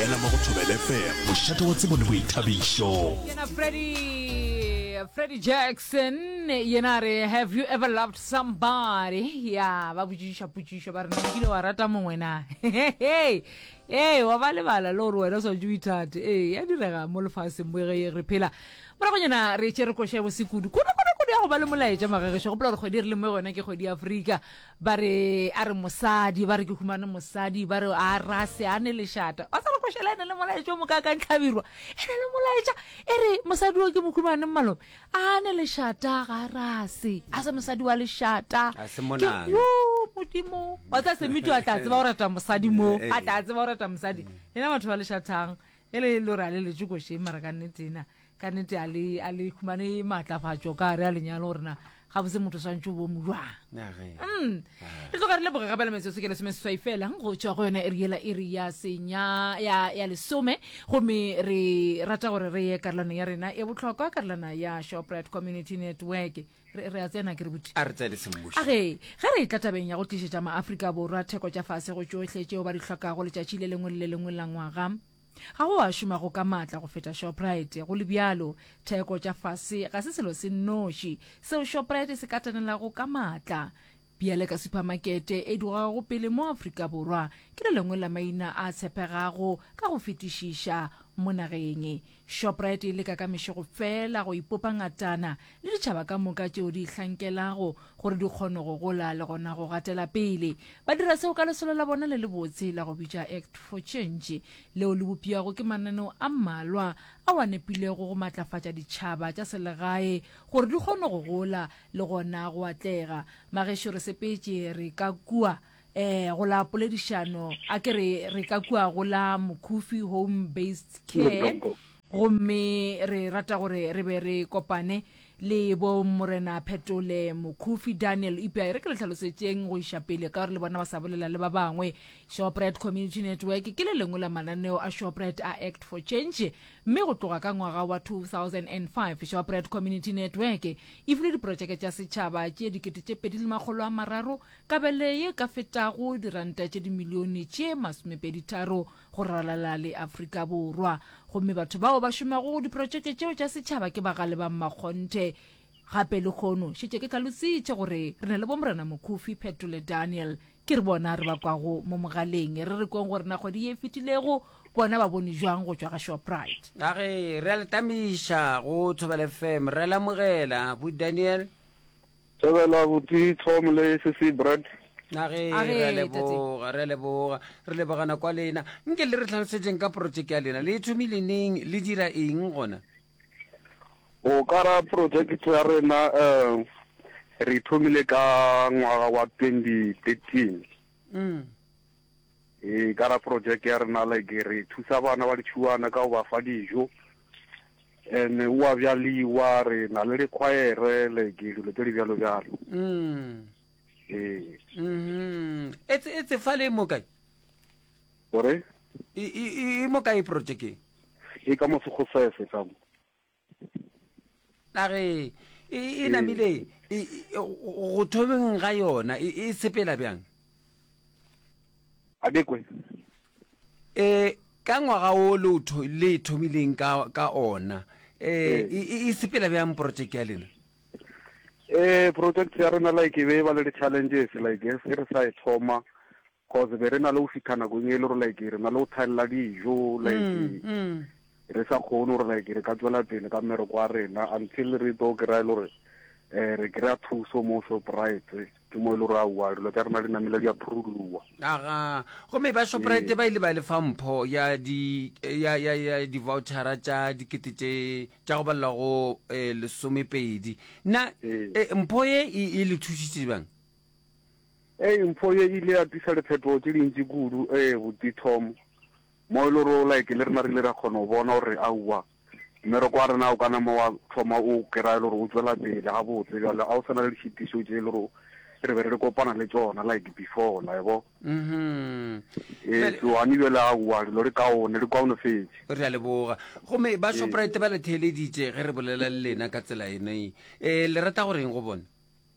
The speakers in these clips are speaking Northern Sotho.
ela mo go thobele fm mošate wa tsebo le boithabišo yena freddy freddy jackson yena a re have you ever loved somebody ya ba botšišiša potšišo ba re na kile wa rata mongwe na ee ee wa ba lebala le gore wena o swantse o ithate ee ya direga mo lefaseng mo ge re phela moragonyana re tše re koša bosekudu kudu kudu kudu ya go ba le molaetša magagešo gopola gore kgwedi e re le mo yone ke kgwedi ya afrika Ba re a re mosadi, ba re ke humane mosadi, ba re a ra se a ne lešata. Wa sa lokošela e ne le molaetša o mokaakang tlhabirwa. E ne le molaetša e re mosadi o ke mohumane malome. A ne lešata ga ra se. A se mosadi wa lešata. A se monana. Yo modimo. Wa sa se mito a tla tseba o rata mosadi mo. Eh, eh. A tla tseba o rata mosadi. Yena batho ba lešathang. E le lora le letšokošeng mara ka nnetena. ka nete a le a le khumane matlafatšo ka re a lenyalo gore na ga bose motho swantse o bo mojwang mm. re tloga re leboge gape le metsotso ke lesome seswai felang go tswa go yone e riela e re ya senya ya ya lesome gomme re rata gore re ye karolano ya rena e botlhokwa karolana ya shoprite community network re re a tsena ke re botse a re tsene semmuso a ge ge re tla tabeng ya go tlisetsa maaforika borwa theko tša fase go tšohle tšeo ba di hlokago letšatši le lengwe le le lengwe la ngwaga Ga go a šoma go ka matla go feta Shoprite. Go le bjalo, theko tša fase ga se selo se nnoši seo Shoprite se katanelago ka matla. Bjale ka supamakete e dugago pele mo Afrika Borwa, ke le lengwe la maina a tshepegago ka go fetišiša mo nageng. Shoprite e leka ka mešego feela go ipopa ngatana le ditšhaba ka moka tšeo di ihlankelago gore di kgone go gola le gona go gatela pele. Ba dira seo ka lesolo la bona le lebotse la go bitša Act for Change, leo le bopjago ke mananeo a mmalwa ao a nepilego go matlafatša ditšhaba tša selegae gore di kgone go gola le gona go atlega. Magešu re sepetše re ka kua. eh go la poledišano a ke re re ka kua go la mokhufi home based care gomme re rata gore re be re kopane le bo morena phetole mokhufi daniel ipea e re ke le tlhalosetšeng go iša pele ka gore le bona ba sa bolela le ba bangwe shoprite community network ke le lengwe la mananeo a shoprite a act for change mme go tloga ka ngwaga wa 2005 shoprite community network e file diprotšeke tša setšhaba tše dikete tše pedi le makgolo a mararo Kabele ye ka fetago diranta tše dimilione tše masomepeditharo go ralala le Afrika Borwa. Gomme batho bao ba šomago go diprotšeke tšeo tša setšhaba ke bagale ba mmakgonthe. Gape lehono šetše ke hlalositše gore re na le Bomorena Mokhufi, Petro le Daniel. Ke re bona re ba kwago mo mogaleng. Re re kweng gore na kgwedi ye e fetilego bona ba bone jwang go tšwa ga Shoprite. Ka ge re a le tamiša go Thobela FM, re a le amogela, bo Daniel. Thobela abuti Tom le sesi Brad. Nage A re, re a Tate. leboga re a leboga re lebogana kwa lena nke le re tlhalosetšeng ka projeke ya lena le e thomile neng le dira eng gona O ka ra project ya rena um re thomile ka ngwaga wa 2013. mm. E ka ra project ya rena like re thusa bana ba ditšhuwana ka go ba fa dijo ene o a bjaliwa re na le dikgwaere like dilo tse di bjalo bjalo mm. ee mm-hmm. e tse fa le mo kae ore e mo kae project e ka mo segosese ka mo nage e, e namile e, go thobeng ga yona e, e sepela bjang adekwe e ka ngwaga o le e thomileng ka ona um e sepela bjang project ya lena um project ya rena like e be e ba le di-challenges like e re sa e thoma Cause be re na le go fitha nakong e le gore like re na le go thaelela dijo like re sa kgone gore like re ka tswela pele ka mmereko wa rena until re tlo kry-a e le gore um re kry-a thuso mo shoprite ke mo e le gore aowa dilo tsa rena di namele di approlowa aga gomme ba shoprite ba ile ba le fa mpho ya di ya ya ya di-vouchera tša dikete tše tša go balela go um lesomepedi na Ee. eh, mpho ye e e le thusitse bang Ee, mpho ye e ile ya tliša liphetogo tše dintši kudu, ee, Buti Tom, moo e lego like le rena re ile ra kgona go bona gore aowa, mmereko wa rena o ka nama wa thoma o kry-a e le gore o tšwela pele gabotse bjale, ga go sa na le ditšhitišo tše e le gore re be re re kopana le tšona like before, la e bo. Mhm. Ee, so gane bjale aowa, dilo di kaone, di kaonofetše. re a leboga gomme ba Ee. shoprite ba le theeleditše ge re bolela le lena ka tsela ene um le rata goreng go bone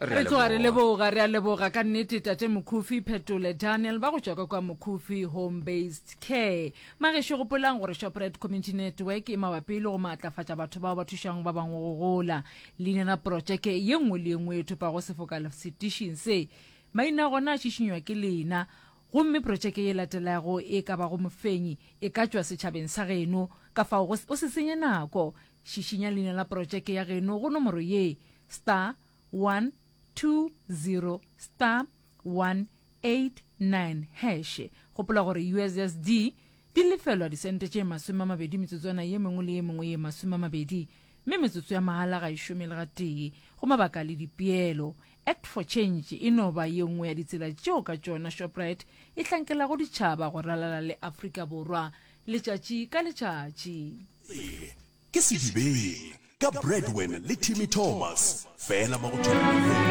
Re tloga re leboga, re a leboga ka nnete Tate Mokhufi, Phetole Daniel ba go tšwa ka kwa Mokhufi Home Based Care. Magešo gopolang gore Shoprite Community Network e mabapi le go maatlafatša batho bao ba thušang ba bangwe go gola. Leina la protšeke ye nngwe le ye nngwe e thopago sefoka setišing se, maina a gona a šišinywa ke lena. Gomme protšeke ye latelago e ka bago mofenyi e ka tšwa setšhabeng sa geno. Kafao go, o se senye nako. Šišinya leina la porotšeke ya geno go nomoro ye, star 120 star 189 hash. Gopola gore USSD di lefelwa disente tše masome a mabedi metsotswana ye mengwe le ye mengwe ye masome a mabedi, mme metsotso ya mahala ga e šome le gatee. Go mabaka le dipeelo, Act for Change e no ba ye nngwe ya ditsela tšeo ka tšona Shoprite e hlankelago ditšhaba go ralala le Afrika Borwa. Letšatši ka letšatši. Pele ke Sedibeng ka Bradwen le Timmy Thomas, fela mo go Tšwelapele.